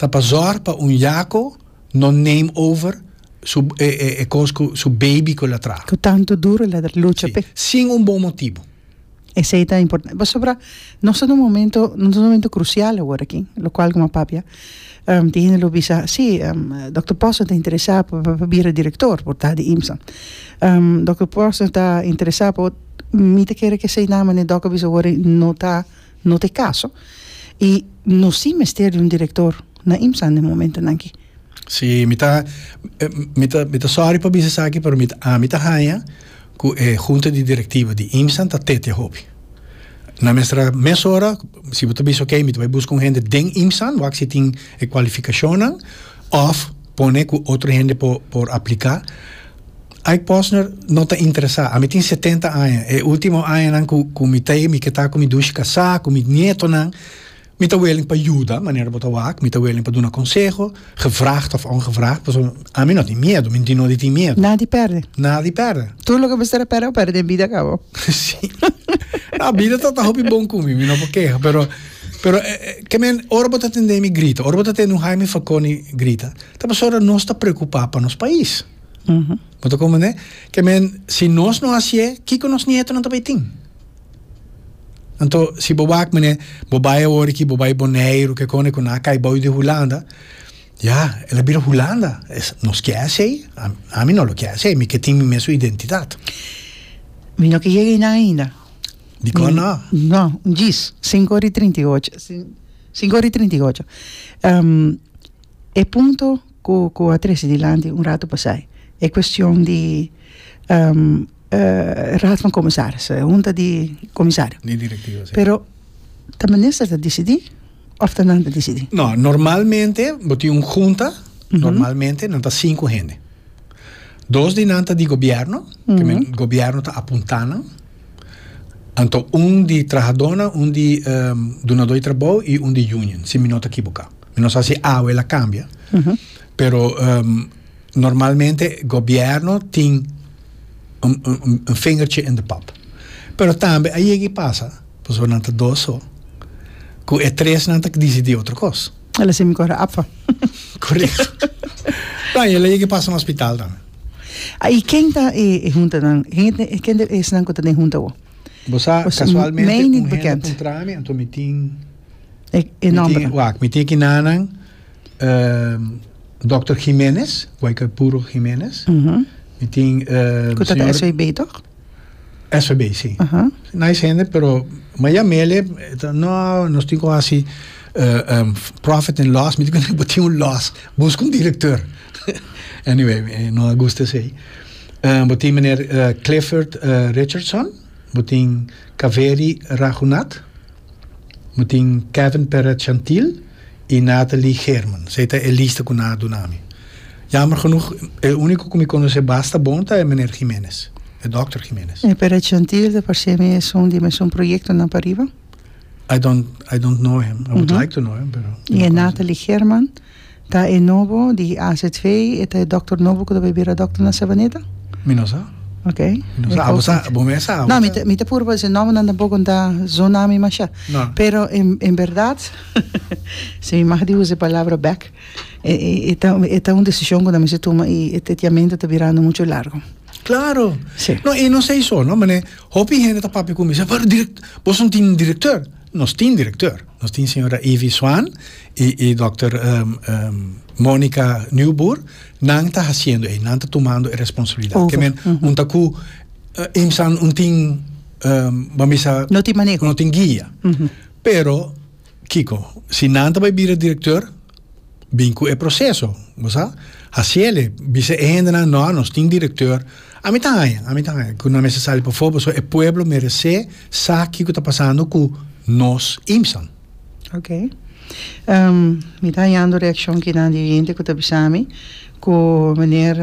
ta pa zorg pa un yako no neem over su e kos ku su baby ku el a traha. Ku tantu duro el a lucha p'e. Si, sin un bon motibu. Esei ta importante pasobra nos ta na un momento nos ta na un momento krusial awor aki lo kual komo a papia tin hende lo bisa si Dòkter Pòsner ta interesá pa pa bira direktor por ta di IMSA Dòkter Pòsner ta interesá pa mi ta kere ke esei nan mane Dòk a bisa awor no ta. No t'e kaso i no si mester di un direktor na IMSA den momentunan aki. Si, mi ta mi ta mi ta sòri pa bisa esaki pero mi ta ami ta haña ku e hunta di direktiva di IMSA ta tete hopi. Na mestra mes ora si bo ta bisa oke mi ta bai buska un hende den IMSA wak si tin e kualifikashonnan òf pone ku otro hende por por apliká Ike Posner no ta interesá. Ami tin setenta aña. E último añanan ku mi ta ei mi ke ta ku mi dushi kasá, ku mi nietonan. Mi ta willing pa yuda, manera bo ta wak. Mi ta willing pa duna konseho, gevraagd òf ongevraagd, pasobra ami no tin miedu. Mi tin no di tin miedu. Nada di pèrdè. Nada di pèrdè. Tur loke mester a pèrdè, bo pèrdè den bida kaba. Sí. Nau, bida ta ta hopi bon ku mi, mi no por keha, pero, pero ke men ora bo ta tende mi grita, ora bo ta tende un Haimi Falcone grita, ta pasobra nos ta preokupá pa nos pais. Bo ta comprende? Ke men, si nos no hasié, kiko nos nietonan ta bay tin? Anto, si bo wak mene, bo bay awor aki, bo bay Boneiru, ke kone, ku nan a kai bou di Hulanda, ya, el a bira Hulanda. Es, nos ke hasié? Ami no lo ke hasié, mi ke tin mi mes su identidat. Mi no ke yega einan ainda. Dikon no? No, un djis, sinku ora i trinta i ocho, sinku ora i trinta i ocho. E punto cu cu a trece dilanti un rato pasai e cuestion di raad van comisarissen, e hunta di comisario. Di directivo si. Pero ta minister ta dicidi of ta nan ta dicidi? No, normalmente bo tin un hunta, normalmente nan ta cinco hende. Dos di nan ta di gobierno, cu men gobierno ta apunta nan. Anto un di trahadónan, un di dunadó di trabou i un di union, si mi no ta kiboká. Mi no sa si awe el a kambia, pero normalmente gobièrnu tin un un fingertje in de pòp. Pero tambe a yega i pasa, pasobra nan ta dos so, ku e tresnan ta disidí otro kos. El a semi kore apfa. Korekto. Kan el a yega pasa na ospital tambe? A i ken ta e e huntanan? Ken ta esnan ku ta den hunta awor? Bo sa kasualmente un hende puntra mi anto mi tin mi tin wak mi tin aki nanan dòkter Gimenez, ku ai ka puro Gimenez, mi tin ku ta den SVB tok? SVB si nice hende pero maya mele no nos tin ku hasi profit and loss mi tin ku tin un loss buska un direktor anyway no a gusta esei bo tin meneer Clifford Richardson bo tin Kaveri Raghunath. Mi tin Kevin Perret Chantil i Nathalie Geerman. Esei ta e lista ku nan a duna mi. Yamber genoeg, e úniko ku mi konosé basta bon ta e meneer Giménez, e dòkter Giménez. E Perret Chantil ta parsé mi es un di e mesun proyektonan pariba. I don't, I don't know him. I would like to know him, pero. I e Nathalie Geerman, Ta e nobo di AZV, e ta e dòkter nobo ku ta bai bira dòkter na Savaneta? Mi no sa. Ok. Mi no sa. Abo sa, bo mes sa abo sa. No, mi ta puru pa esei nòmbernan tampoko no ta zona mi masha. No. Pero en bèrdat, si mi mag di usa e palabra bèk, e ta e ta un desishon ku nan mester tuma i e tetiamentu ta birando muchu largu. Klaro. Si. No, i no sa esou no, manera hopi hende ta papia ku mi, sa, pero direk, boso no tin direktor? Nos tin direktor, nos tin señora Ivy Swan i i dòkter Monica Nieuwboer, nan ta hasiendo ei, nan ta tumando e responsablidat. Ke men un ta ku IMSAN un tin bo a bisa no tin guia pero kiko si nan ta bai bira direktor. Bin cu e proceso, bo sa. Haci el e bisa e hendenan, No, nos tin director. Ami ta haña, ami ta haña cu no a mester sali pafo, pasobra e pueblo merece sa kico ta pasando cu nos IMSAN. Ok. Mi ta hañando reaccion kinan di oyente cu ta bisa mi cu meneer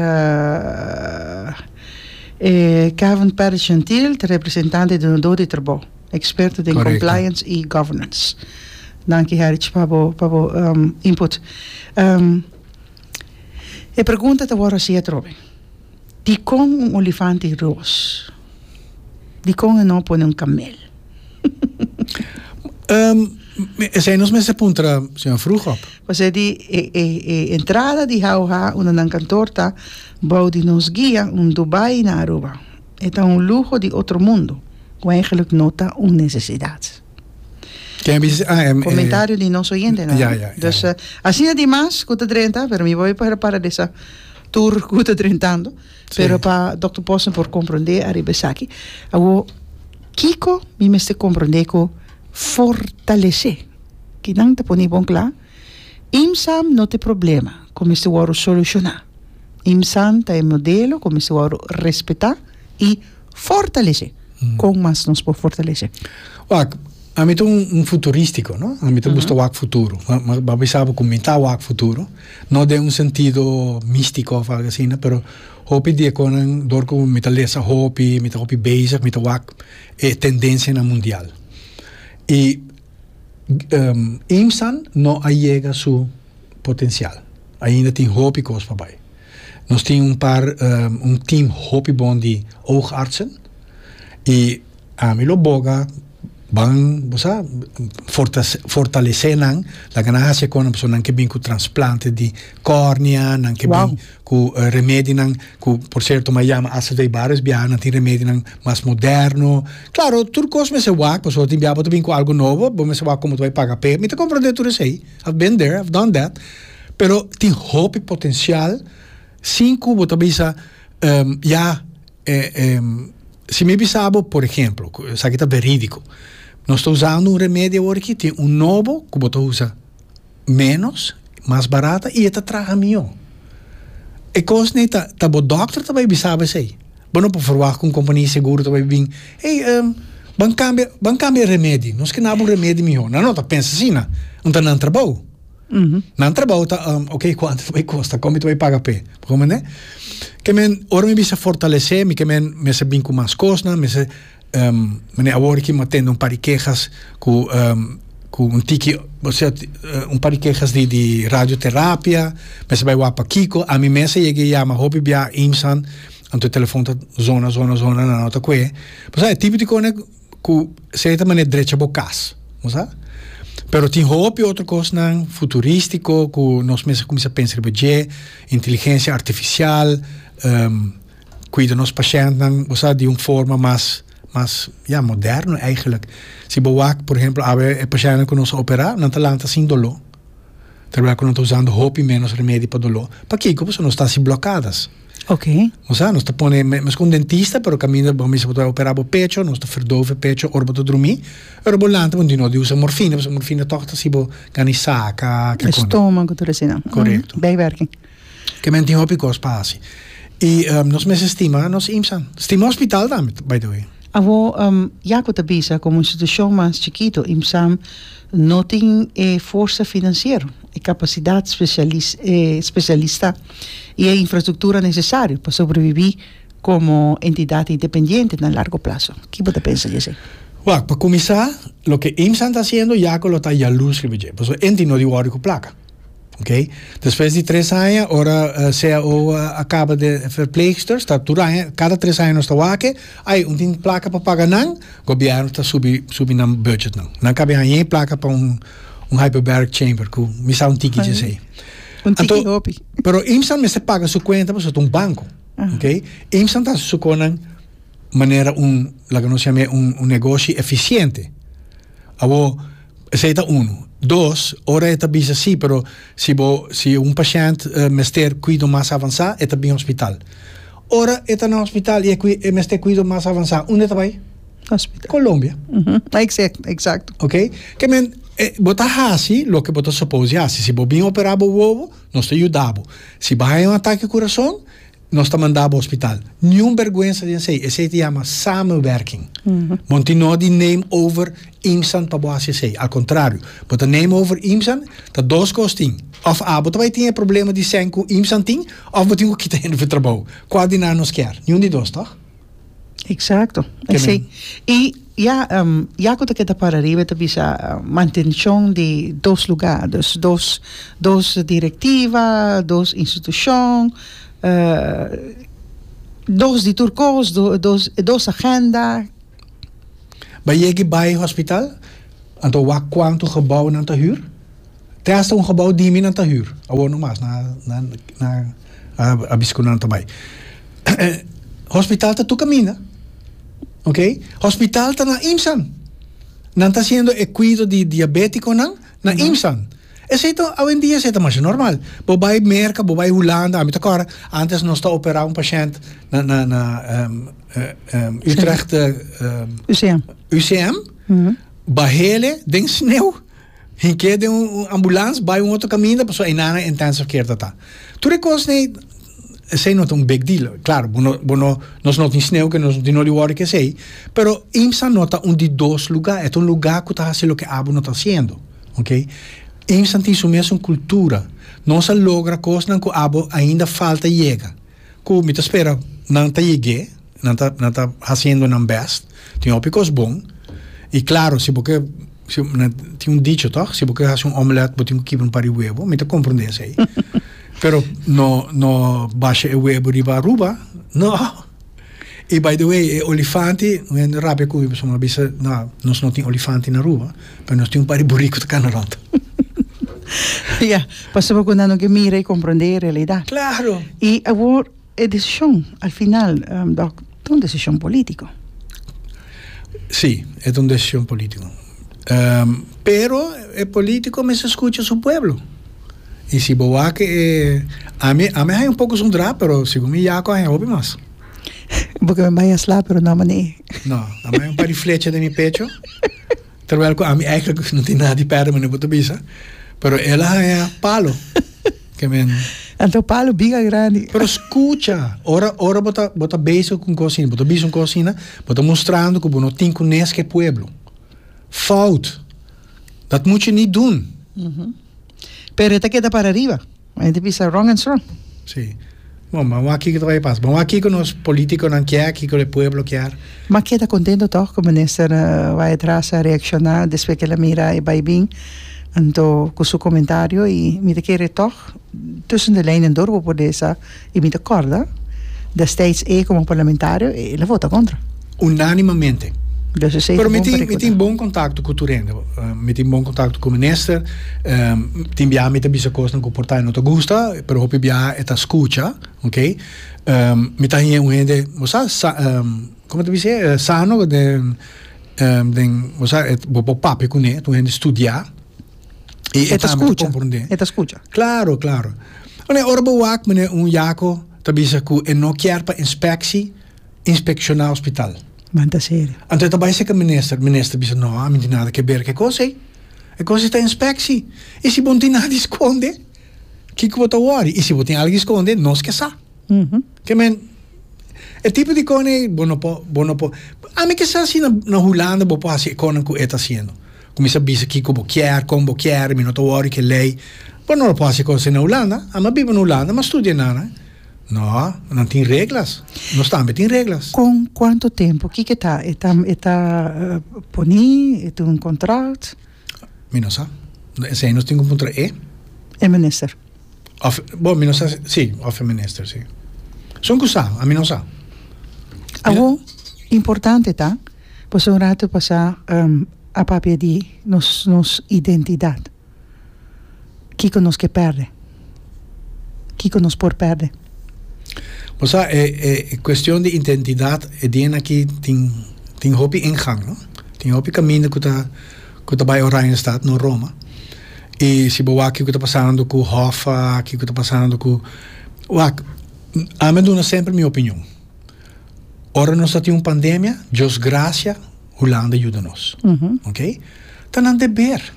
Kevin Perez Gentil ta representante di un do di trabou. Experto den compliance y governance. Danki Herich pa bo pa bo um input. Um e pregunta ta wor hasi atrobe. Dikon un olifanti roos? Dikon e no pone un kamel? Um esei nos mester puntra señor Vroegop. Pasobra di e e e entrada di Hauha unda nan kantor ta bou di nos guia un Dubai na Aruba. E ta un luho di otro mundo, cu eigenlijk no ta un necesidad. Ken a bisa si e. Comentario di nos oyente nan. Ja, ja, ja. Dus asina di mas cu ta drenta, pero mi wou para para di sa tur cu ta drentando, Si. pero pa Dokter Posner por comprende ariba esaki, a wou kico mi mester comprende cu fortalece? Kinan ta poni bon cla? Imsam no ta e problema ku mester wòrdu solushoná. Imsam ta e modelo ku mester wòrdu respetá i fortalesé. Kon mas nos por fortalesé? Wak, ami ta un futurístiko, no? Ami ta gusta wak futuro. Mi pape sabi ku mi ta wak futuro, no den un sentido místiko òf algu asina, pero hopi di e kosanan dor ku mi ta lesa hopi, mi ta hopi bezig, mi ta wak e tendensianan mundial. I. Imsan no a yega su potensial. Ainda tin hopi kos pa bai. Nos tin un par, un team hopi bon di oogartsen i ami lo boga ban bo sa fortalesé nan laga nan hasi e kon nan pasobra nan ke bin ku transplante di kòrnia, nan ke bin. Ku remedinan ku por serto m'a yama acv bares biaha nan tin remedinan mas moderno. Klaro, tur kos mester wak, pasobra bo tin biaha bo ta bin ku algu nobo, bo mester wak komo ta bai paga p'e. Mi ta komprende tur esei. I've been there, I've done that. Pero tin hopi potensial sin ku bo ta bisa ya si mi bisa bo, por ehemplo, ku esaki ta veridiko, nos ta usando un remedio awor aki, tin un nobo ku bo ta usa. menos, mas barata y e ta traha mihó. E cosne ta, ta bo doctor ta bay bisa bo esey. Bo no por verwacht cu un compania di seguro ta bay bin, Hey, ehm, ban cambia, ban cambia e remedi, nos ke naba un remedi mihó. Nan no ta pensa asina. Unda nan trabou? Nan trabou ta, ehm, ok, cuantu ta bay costa? Con mi ta bay paga p'e? Bo comprende? Ke men, ora mi bisa fortalece, mi ke men mester bin cu mas cosnan, mester. Mane awor aki mi a tende un par di kehas ku ku un tiki osea un par di kehas di di radioterapia mester a bai wak pa kiko ami mes a yega a yama hopi biaha IMSAn anto e telefon ta zona zona zona nan a ta kue bo sa e tipo di kosnan ku esei ta mane drecha bo kas bo sa pero tin hopi otro kosnan futuristiko ku nos mes a kuminsha pensa riba dje inteligencia artificial. Cuida nos pacientnan, bo sa, di un forma mas, mas, ya, moderno eigenlijk. Si bo wak, por ehemplo, awe e pacientnan cu nos a opera, nan ta lanta sin dolo, terwijl cu nan ta usando hopi menos remedi pa dolo. Pakico? Pasobra nos ta haci blocadas. Oké. Bo sa, nos ta pone, me, mescos un dentista, pero caminda bo a misa bo ta opera bo pecho, nos ta verdove e pecho ora bo ta drumi, pero bo lanta bo di no di usa morfina, pasobra morfina toch ta haci bo gana di saca, kico nan. Estomago, tur asina. Correcto. Bijwerking. Ke men tin hopi kos pa hasi. I nos mester stima nos IMSAn. Stima hospital tambe, by the way. Awo, Jaco ta bisa komo un institushon mas chikito, IMSAn no tin e forsa finansiero, e kapasidat spesialis e spesialista i e infrastruktura nesesario pa sobrebibí komo entidat independiente na largo plaso. Ki bo ta pensa di esei? Wak, pa kuminsá, loke IMSAn ta hasiendo, Jaco lo ta yalus riba dje, pasobra e tin no di wòrdu ku plaka. Ok. Despues di tres aña, ora cao a caba den verpleegsters, ta tur aña, cada tres aña nos ta wake, ay, un tin placa pa paga nan, gobierno ta subi, subi nan budget nan. Nan caba haña e placa pa un hyperbaric chamber cu mi sa un tikichi esey. Un tiki hopi. Pero IMSS nan mester paga su cuenta pasobra ta un banco. Ok. IMSS nan ta hasi su conan manera un, laga nos yama e un negoshi eficiente. Awor, esei ta unu. Dos, ora e ta bisa sí, pero si bo, si un pashènt mester kuido mas avansá, e ta bin hospital. Ora e ta na hospital i e kui, e mester kuido mas avansá, unda e ta bai? Hospital. Colombia. Exact, exacto. Ok? Ke men, e, bo ta hasi loke bo ta suppose di hasi. Si bo bin operá bo wowo, nos ta yuda bo. Si bo haña un atake kurason, nos ta manda bo hospital. Niun berguensa den esey. Esey ta yama samenwerking. Monti no di neem over IMSAN pa bo hasi esey. Al contrario, bo ta neem over IMSAN, ta dos cos tin. Of a bo ta bay tin e problema di sèn cu IMSAN tin, of bo tin cu kita hende fu trabou. Cua di nan nos kier? Niun di dos, toch? Exacto, esey. Y ya, um, ya cu te queda para arriba, te bisa uh, mantención de dos lugar, dus dos, dos directiva, dos institución, uh, dos di tur cos, do, dos, dos agenda. Ba yegi bay hospital? Anto wak cuanto gebouwnan ta huur? te hasta un gebou dimi nan ta hür, awor no mas, nan a bisa ku nan ta bai. Hospital ta tur kaminda, ok, hospital ta na IMSAn, nan ta hasiendo e kuido di diabétikonan na IMSAn, esei ta awendia esei ta masha normal, bo bai Merka, bo bai Hulanda, ami ta kòrda ántes nos ta operá un pashènt na na na Utrecht UCM, bahele den sneu. Hin ke den un ambulans bai un otro kaminda pasobra einan e intensive care ta ta. Tur e kos nei esei no ta un big deal klaro bo no bo no nos no tin sneu ke nos no tin no di wòrdu kesei pero IMSA no ta un di dos lugá e ta un lugá ku ta hasi loke abo no ta hasiendo okay IMSA tin su mes un kultura nos a logra kosnan ku abo ainda falta yega. Cu mi ta spera nan ta yeg'e, nan ta nan ta haciendo nan best, tin hopi cos bon, y claro si bo ke si nan tin un dicho toch, si bo ke haci un omelette bo tin cu kiba un par di huevo, mi ta comprende esey, pero no no basha e huevo riba Aruba, no, y by the way e olifante un hende rabia cu mi pasobra mi a bisa, nah, nos no tin olifante na Aruba. Pero nos tin un par di buriku ku ta kana rond. Ya, pasobra ku nan no ke mira i komprondé e realidad. Klaro. I awor e desishon al final, dòk, ta un desishon polítiko. Sí, e ta un desishon polítiko. Pero e polítiko mester skucha su pueblo. I si bo wak e, ami, ami haña un poko esun dra, pero segun mi Yaku a haña hopi mas. Bo ke mi bai a slap, pero no a mané. No, ami haña un par di flecha den mi pecho. Terwijl cu ami eigenlijk no tin nada di perde manera bo ta bisa. Pero el a haña palo. Ke men. Anto palo big a grandi. Pero scucha, ora ora bo ta bo ta bezig cu un cosa asina, bo ta bisa un cosa asina, bo ta mostrando cu bo no tin cuneski e pueblo. Fout. Dat mucho ni dun. Pero e ta keda para riba. Mi hende bisa rong en strong. Sí. Bon, bam'o a kiko ta bay pasa. Bam'o a kiko nos politiconan kier, kiko e pueblo kier. M'a keda contento toch cu Minister Waidras a reacciona despues que el a mira e baybin anto cu su comentario y mi ta kere toch tussen de lijnen door bo por lesa I mi ta kòrda, destijds e komo parlamentario e lo vota kontra. Unánimamente. Dos esei ta bon pa rekuta. Pero mi tin bon kontakto ku tur hende. Mi tin bon kontakto ku minister. Tin biaha mi ta bisa kosnan ku por ta e no ta gusta, pero hopi biaha e ta skucha, ok. Mi ta haña un hende, bo sa, komo ta bis'é? Sano den, bo sa, bo por papia kuné, ta un hende studiá. E, e, e ta escucha. E ta escucha. Claro, claro. Ora, ora bo wak, meneer, un yako ta bisa ku e no kier pa inspeksi inspekshona hospital. Manta serio. Anto e ta bai seka minister, minister bisa no, a mi tin nada ke ber ke kos ei. E kos ei ta inspeksi. I si bon tin nada di skonde, kiko bo ta wori? I si bo tin algo di skonde, nos ke sa. Mhm. Ke men, e tipo di kon ei bo no por, bo no por. Ami ke sa si na, na Hulanda bo por hasi e konnan ku e ta hasiendo. Cuminsa bisa kico bo kier, con bo kier, mi no ta worry cu e ley. Bo no lo por haci cosa así na Hulanda. Ami a biba na Hulanda, ami a studia nan. No, nan tin reglas. Nos tambe tin reglas. Con cuanto tempo? Kico ta? E ta, e ta poni, e ta un contract? Mi no sa. Esey nos tin cu puntra e. E minister. Of, bo, mi no sa, si, of e minister, si. Son cu sa, ami no sa. Awo, importante ta. Pasobra un ratu pasá a papia di nos nos identidat. Kiko nos ke pèrdè? Kiko nos por pèrdè? Bo sa e e kuestion di identidat e dien aki tin tin hopi ingang no. Tin hopi kaminda ku ta ku ta bai Oranjestad, no Roma. I si bo wak ke ku ta pasando ku Hoffa, ke ku ta pasando ku wak ami a duna semper mi opinion. Ora nos ta tin un pandemia, Dios gracia, Hulanda yuda nos. Mm -hmm. Ok? Ta nan deber.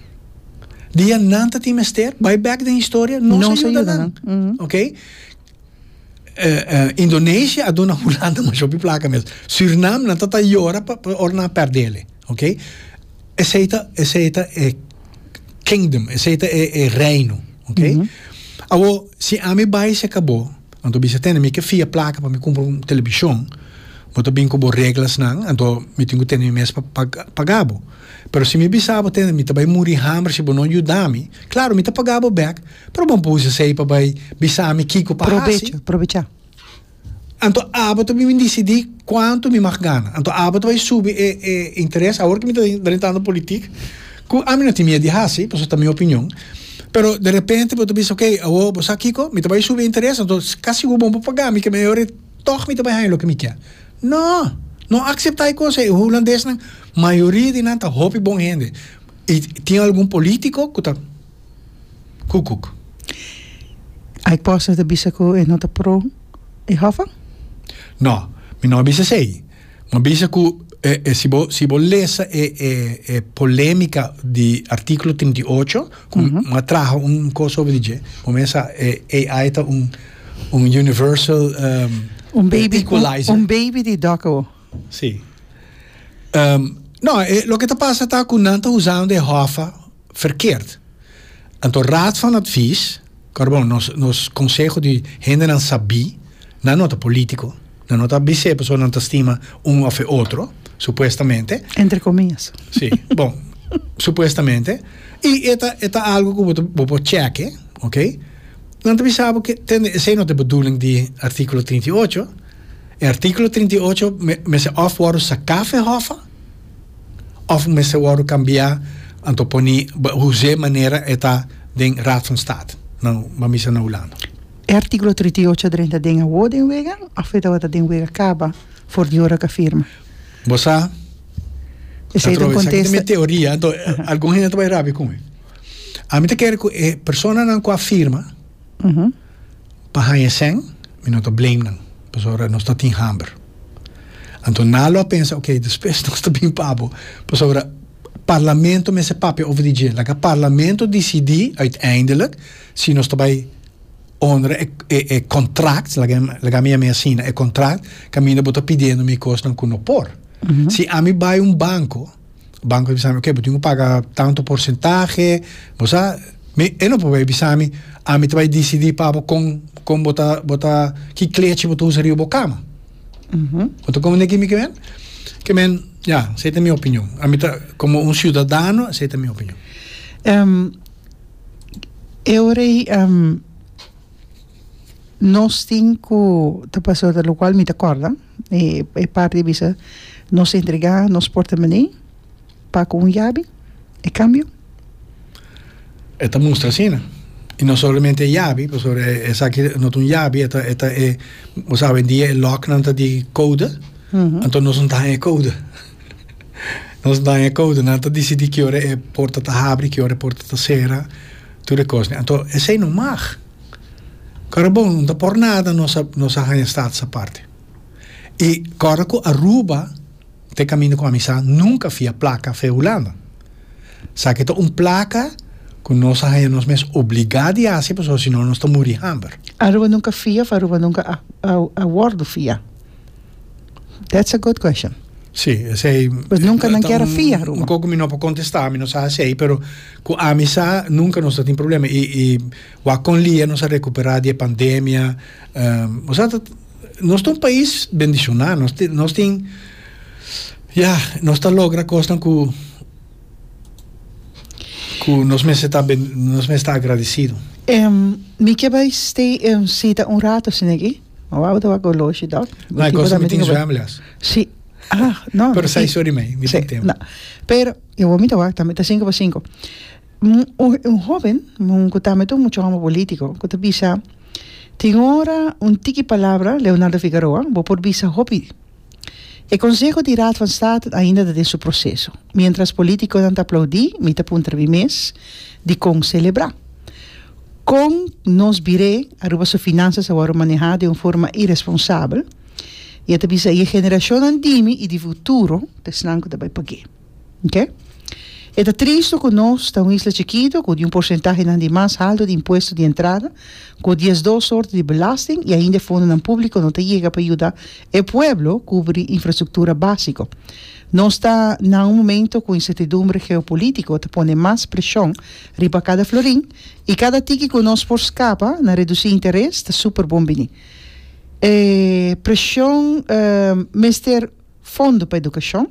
Dia nan ta tin mester, bai back den historia, nos, nos ayuda, ayuda nan. Mm -hmm. Ok? Uh, uh, Indonesia a duna Hulanda mas shopi placa mes. Suriname nan ta ta llora pa, pa or nan perdele. Ok? Esei ta, esei ta e kingdom, esei ta e, e reino. Ok? Mm -hmm. Awo, si ami bai se cabo, Anto bisa tene mi ke fia plaka pa mi kumpra un telebishon, bo ta bin ku bo reglasnan, anto mi tin ku tene mi mes pa paga bo. Pero si mi bisa bo tende mi ta bai muri hamber si bo no yuda mi, klaro mi ta paga bo bèk, pero bo bo usa esei pa bai bisa mi kiko pa hasi. Anto abo ta bin disidí kuantu mi mag gana. Anto abo ta bai subi e interes awor ke mi ta drentando politik. Cu ami no tin mied di haci, pasobra ta mi opinion. Pero derepente bo ta bisa, ok, awor bo sa kico? Mi ta bay subi e interes, anto ca sigur bon pa paga mi, keme e ora ei tog mi ta bay haña loke mi kier. No! No acepta e cos ei. E Hulandesnan, mayoria di nan ta hopi bon hende. Y tin algun politico cu ta cucuc. Ai cosnan ta bisa cu e no ta pro e hofan? No, mi no a bisa esey. M'a bisa cu si bo si bo lesa e e e polemica di articulo trinta y ocho cu m'a traha un cos over di dje bo mesa e AI ta un un universal Un baby equalizer. un baby di Doco. Si. Um, no, e, loke ta pasa ta cu nan ta usando e hoffa verkeerd. Anto Raad van Advies, Carbon, nos nos conseho di hendenan sabí, nan no ta político, nan no ta bis'é pasobra nan ta stima un of e otro, supuestamente. Entre comillas. Sí, bon, supuestamente. I e ta e ta algo ku bo ta bo por chèk'e, ok? Nan ta bisa bo ke tende esei no ta e bedoeling di artíkulo trinta i ocho. E artíkulo trinta i ocho me mester òf wòrdu saká f'e hòf a. òf mester wòrdu kambiá, anto pone huzé manera e ta den Raad van State na Bamisa na Hulanda. E artíkulo trinta i ocho a drenta den awó den wega òf e tabata den wega kaba for di ora ku a firma? Bo sa, Patroa, esaki ta mi teoria, anto algun hende ta bai rápia ku mi. Ami ta kere ku e personanan ku a firma. pa haña sèn, mi no ta blame nan, pasobra nos ta tin hamber. Anto nan a lo a pensa, oke, despues nos ta bin pa bo, pasobra parlamento mester papia over di dje. Laga parlamento disidí uiteindelijk si nos ta bai honra e e kòntrakt, laga laga mi a mi a sina e kòntrakt, kaminda bo ta pidiendo mi kosnan ku no por. Si ami bai un banko. Banco a bisami ok bo tin cu paga tanto porcentahe bo sa mi e no por bay bisami ami ta bay dicidi pa bo con con bo ta bo ta ki clechi bo ta usa riba bo cama bo ta comprende kimi ke win ke men ya esey ta mi opinion ami ta como un ciudadano esey ta mi opinion. e ora ey nos tin cu ta pasa ota locual mi ta corda. e parti a bisa nos entrega nos portamone pa cu un yabi e cambio? E ta mustra asina y no solamente e yabi pasobra esaki no ta un yabi e ta e ta e bo sabi hoy e locknan ta di code anto nos no ta haña e code nos no ta haña e code nan ta dicidi ki ora e porta ta habri ki ora e porta ta cera tur e cosnan anto esey no mag. Karabon no ta por nada nos a nos a haña status aparte y ora cu Aruba te caminda cu amisa nunca a fia placa fe Hulanda saki ta un placa cu nos a haña nos mes obliga di haci pasobra si no nos ta muri hamber. Aruba nunca fia of Aruba nunca a a a wordo fia. That's a good question. Sí, esei... Pues nunca nan kera fia, Ruben. Un koko mi no por contestar, mi no sa esei, pero cu ami sa, nunca nos ta tin problema. Y, y wa con lia nos a recupera di e pandemia. Um, o sa ta, nos ta un pais bendiciona, nos tin, nos tin, ya, nos ta logra cosnan cu, cu nos mester ta ben, nos mester ta agradecido. Um, mi ke bai stay, um, sita un rato, Sineki. Ma wou ta wak oloshi dok. No, e cosa mi tin zwemles. Si. Ah, no. Pero sai sorry me, mi tin tem. No. Pero, e wou mi ta wak, mi ta cinco pa cinco. Un, un hoben, un ku ta met un mucha homo politico, ku ta bisa, tin ora un tiki palabra, Leonardo Figaroa, bo por bisa hopi. E konseho di Raad van State ainda ta den su proseso. Mientras politikonan ta aplaudí, mi ta puntra mi mes, dikon selebrá? Kon nos bir'é Aruba su finansas a wòrdu manehá den un forma iresponsabel? I e ta bisa, i e generashonnan di mi i di futuro ta esnan ku ta bai pag'é. Ok. E ta tristu ku nos ta un isla chikitu ku di un porsentahenan di mas haltu di impuesto di entrada, ku diesdos sorti di belasting i ainda e fondonan públiko no ta yega pa yuda e pueblo kubri infrastruktura básiko. Nos ta na un momentu ku insertidumbre geopolítiko ta pone mas preshon riba kada florin i kada tiki ku nos por skapa na redusí interes ta super bon biní. E preshon mester. Fondo pa edukashon,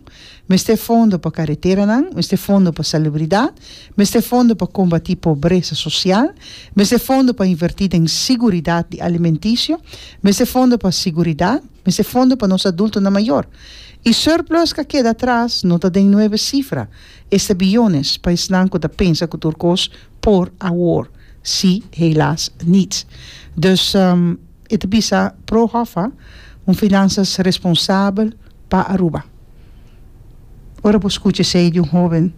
mester fondo pa kareteranan, mester fondo pa salubridat, mester fondo pa kombatí pobresa sosial, mester fondo pa invertí den siguridat di alimentisio, mester fondo pa siguridat, mester fondo pa nos adultonan mayor. I surplus ka keda atras, no ta den nuebe sifra, esta biyones pa esnan ku ta pensa ku tur kos por awor, si, helaas, niet. Dus. E ta bisa Pro Hoffa, Un finansas responsabel pa Aruba. Ora bo skucha esei di un hoben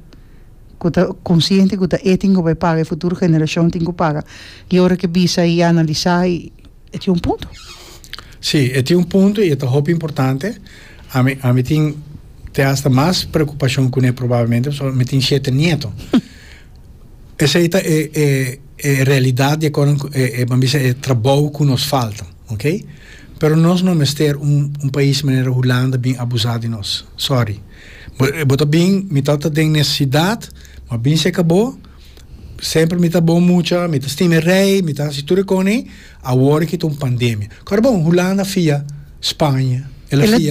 ku ta konsiente ku ta e tin ku bai paga, e futuro generashon tin ku paga, i ora ke bisa i analisá i e tin un punto. Sí, e tin un punto i e ta hopi importante. Ami ami tin te asta mas preokupashon kuné probablemente pasobra mi tin shete nieto. Esey ta e e e realidad di acordo cu e e ban bisa e trabou cu nos falta okay pero nos no mester un un pais manera Hulanda bin abusa di nos sorry bo bo ta bin mi ta ta den necesidad ma bin seca bo semper mi ta bon mucha mi ta stima e rey mi ta haci tur e cone awor ki ta un pandemia cor bon Hulanda fia Spaña ela fia.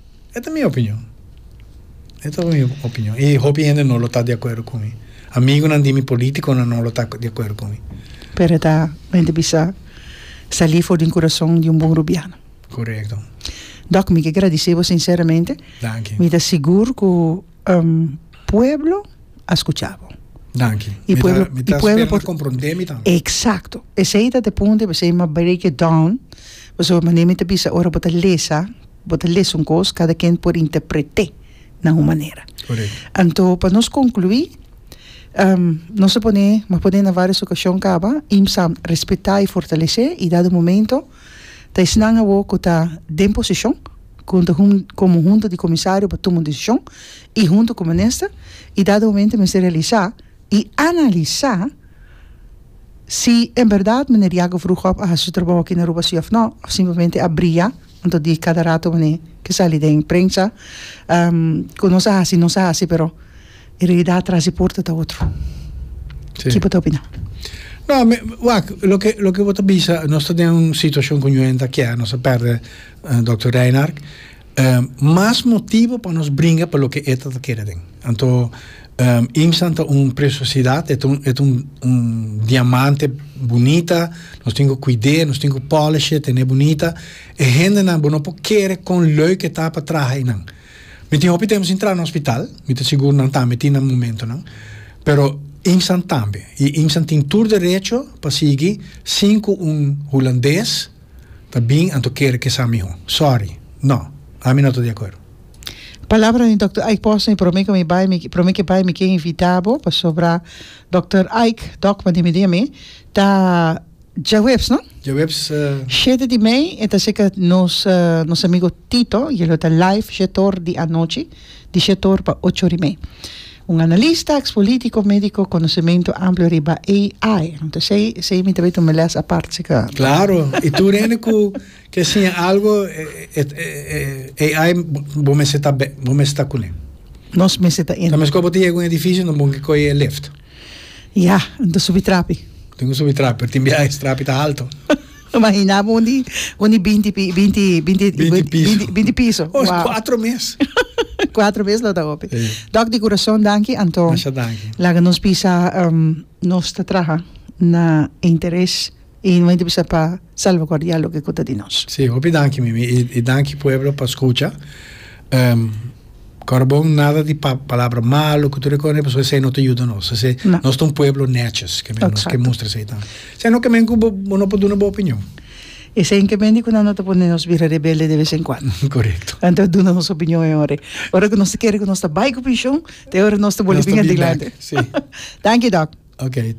E ta mi opinion. E ta mi opinion. I hopi hende no lo ta di akuerdo ku mi. Amigunan di mi, politikonan no lo ta di akuerdo ku mi. Pero e ta un hende bisa sali for den kurason di un bon rubiano. Korekto. Dòk, mi ke gradisé bo sinseramente. Danki. Mi ta sigur ku pueblo a skucha bo. Danki. I pueblo, i pueblo por. Mi ta spera bo komprondé mi tambe. Eksakto. Esei ta ta e punto i p'esei mi a break it down. Pasobra mane'e mi ta bisa ora bo ta lesa Bo ta lesa un kos, kada ken por interpret'é na un manera. Corek. Anto pa nos konkluí, nos ta pone, m'a pone na vários okashon kaba, IMSAM respetá i fortalesé i dado momento ta esnan awor ku ta den poseshon ku ta komo hunta di komisario pa tuma un desishon i huntu ku minister i dado momento mester realisá i analisá si en bèrdat meneer Jacob Vroegop a hasi su trabou aki na Aruba si òf nò òf simplemente a bria Anto di kada rato mane ke sali den prensa ku nos a hasi nos a hasi pero e realidat tras di porta ta otro. Ki bo ta opina? No, mi wak loke loke bo ta bisa nos ta den un situashon ku ñu hende a kè nos a pèrdè Dòkter Reinhard mas motibu pa nos bringa pa loke e ta ta keda den. Anto Imsan ta un presiosidat, e ta un diamante bunita, nos tin ku kuid'é, nos tin ku polish'é, ten'é bunita, e hendenan bo no por kere kon lèuk e ta pa traha einan. Mi tin hopi tempu sin traha na hospital, mi ta sigur nan tambe tin nan momentonan, pero Imsan tambe, i Imsan tin tur derecho pa sigui sin ku un hulandes, ta bin anto kere kesa miho. Sorry. No. Ami no ta di akuerdo. Palabra di Dòkter Ike Posner, promé ku mi bai, mi, promé ke bai mi ke invitá bo, pasobra Dòkter Ike, Dòk pa di midie mi, ta Djaweps, no? Djaweps, eh. Shete di mei, e ta seka nos, nos amigo Tito, e lo ta live shete or di anochi, di shete or pa ocho ori mei. Un analista, eks politiko, mediko, konosementu amplu riba AI. Anto esei, esei mi ta bit un meles apart si ka. Klaro, i tur hende ku ke siña algu, e AI bo mester ta be, bo mester ta kuné. Nos mester ta in. Ta meskos bo ta yega un edifisio, no bon ke kohe e lift. Ya, anto subi trapi. Tin ku subi trapi, pero tin biaha es trapi ta haltu. Lo mahinaba un di un di binti pi binti binti Binti piso. binti binti piso. Oh, Wow. cuatro mes. Cuatro mes lo ta hopi. Sí. Doc di curason danki anto Masha danki. laga nos bisa em, nos ta traha na interes y no hay ta bisa pa salvaguardia loke ku ta di nos. Sí, hopi danki Mimi y y danki pueblo pa scucha. Em, Kòrbon nada di palabra malu ku tur e kos pasobra esei no ta yuda nos. Esei nos ta un pueblo nètjes ke nos ke mustra esei tambe. Esei no kemen ku bo no por duna bo opinion. Esei kemen di ku nan no ta pone nos bira rebelde de ves en kuando. Korekto. Nan ta duna nos opinion e ora ei. Ora ku nos ta kere ku nos ta bai ku penshon ta e ora nos ta boli bin adelante. Nos ta bin bèk, si. Danki dòk. Oke.